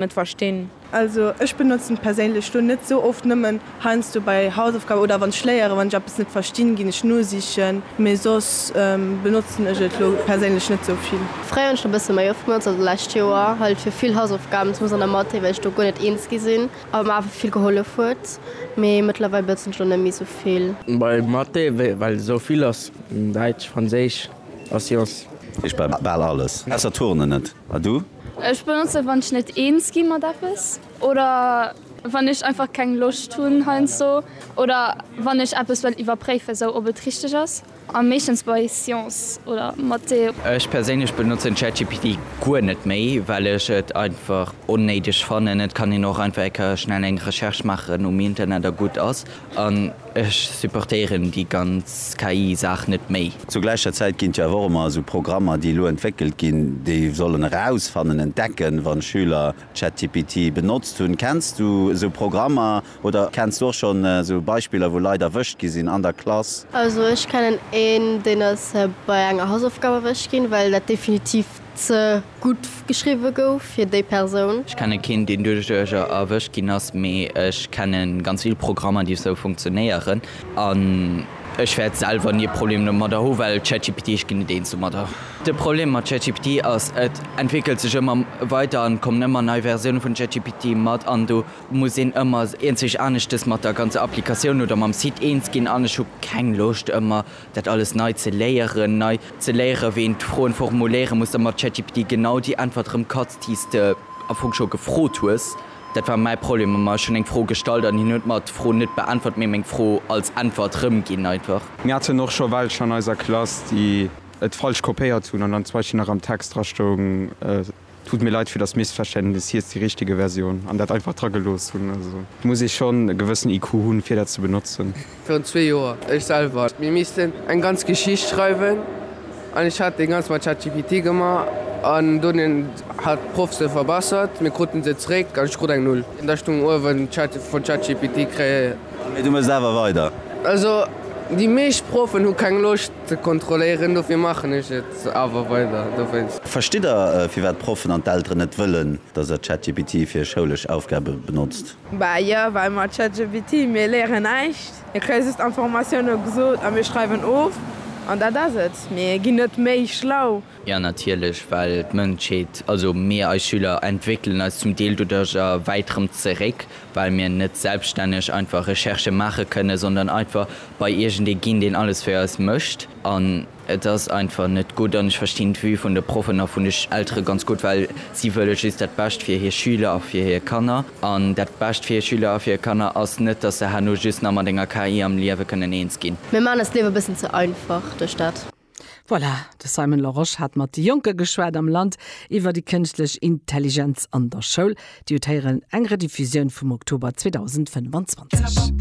net verstinn. Also ech benotzen et perséinlech lo net sou oft, nëmmen heiansdo bei Hausaufgaben oder wann ech léieren, wann ech eppes net verstinn ginn ech nosichen, mee soss benotzen ech et lo perséinlech net sou vill. Fréier hunn ech et e bësse méi oft benotzt, also d'lescht Joer halt fir vill Hausaufgaben, zumindest an der Mathé, well ech do guer net eens gi sinn a mer awer vill gehollef huet, mee mëttlerweil benotzen ech lo net méi sou vill. Bei Mathé well et sou vill ass, Däitsch, Franséisch a Sciences. Ech bal alles ausser Turnen net. A du? Ech benotzen wann ech net eens gi mat eppes oder wann ech einfach keng Loscht hunn heiansdo oder wann ech eppes well iwwerpréifen sou ob et richteg ass a meeschtens bei Science oder Mathé. Ech perséinlech benotzen ChatGPT guer net méi well ech et einfach onnéideg fannen. Et kann een och einfach eng Kéier schnell eng Recherche maachen um Internet a gutt ass. Ech supportéieren déi ganz KI Saach net méi. Zur gläicher Zäit ginn et jo awer och ëmmer esou Programmer, déi elo entwéckelt ginn, déi sollen erausfannen, entdecken, wann d'Schüler ChatGPT benotzt hunn. Kenns du esou Programmer oder kenns du och schonn esou Beispiller, wou Leit erwëscht gi sinn an der Klass? Also ech kennen een, deen ass bei enger Hausaufgab erwëscht ginn, well dat definitiv Ze gutt geschriwwe gouf fir déi Persoun. Ech kenne keen deen duerch Duercher erwëscht ginn ass, mee ech kenne ganz vill Programmer déi esou funktionéieren an ech wäert selwer ni e Problem domadder hu well ChatGPT, ech ginn net eens domadder. De Problem mat ChatGPT ass, et entwéckelt sech ëmmer weider an et kommen ëmmer nei Versioune vun ChatGPT mat an do muss een ëmmer eenzeg aneschtes mat der ganzer Applikatioun oder mam Site eens ginn an ech hu keng Loscht ëmmer dat alles nei ze léieren, nei ze léieren, wéi een d'Froen formuléieren muss, da mat ChatGPT genau déi Äntwert erëm katz, déi s de am Fong scho gefrot hues. Dat war mäi Problem ëmmer, ech hunn eng Fro gestallt an hien huet mer d'Fro net beäntwert, mee meng Fro als Äntwert rëmginn einfach. Mir haten och scho welch an eiser Klass, déi et falsch kopéiert hunn an dann zum Beispill nach am Text drastoung, Tut mir leid fir das Missverständnis, hie ist die richtige Version an dat einfach dra gelooss hunn. Also muss ee schonn e gewëssen IQ hunn, fir dat ze benotzen. Virun zwee Joer, ech selwer. Mir missten eng ganz Geschicht schreiwen an ech hat dee ganz mat ChatGPT gemaach an dunn hat d'Proff se verbessert. Mir kruten se zréck an ech krut eng Null. Da stung uewen Chat vun ChatGPT kréie. Mee du mës awer weider. Also déi meescht Proffen hu keng Loscht. Ze kontrolléieren, dofir maachen ech et awer weider. Verstitt der, firwat d'Proffen an d'Elteren net wëllen, dass der ChatGPT fir schoulesch Aufgabe benotzt? Bah jo, well mat ChatGPT, mir léieren näischt. Mir kréie just Informatioune gesot a mir schreiwen of an dat ass et. Mir ginn net méi schlau. Jo natierlech, well d'Mënschheet, also mir eis Schüler, entwéckelen eis zum Deel doduerch a wäit erëm zeréck, well mir net selbststänneg einfach Recherchë maache kënnen, sondern einfach bei iergendee ginn, deen alles fir eis mécht. An et ass einfach net gutt. An ech verstinn d'Vue vun de Proffen a vun de Eltere ganz gutt, well si wëlle just dat Bescht fir hir Schüler a fir hir Kanner. An dat Bescht fir hir Schüler a fir hir Kanner ass net, dass se herno just nach mat enger KI am Liewe kënnen eens ginn. Mir maachen eis d'Liewe e bëssen ze einfach duerch dat. Voilà, de Simon Larosche hat mat de Jonke geschwat am Land iwwer déi kënschtlech Intelligenz an der Schoul. Dir hutt héieren, eng Rediffusioun vum Oktober 2025.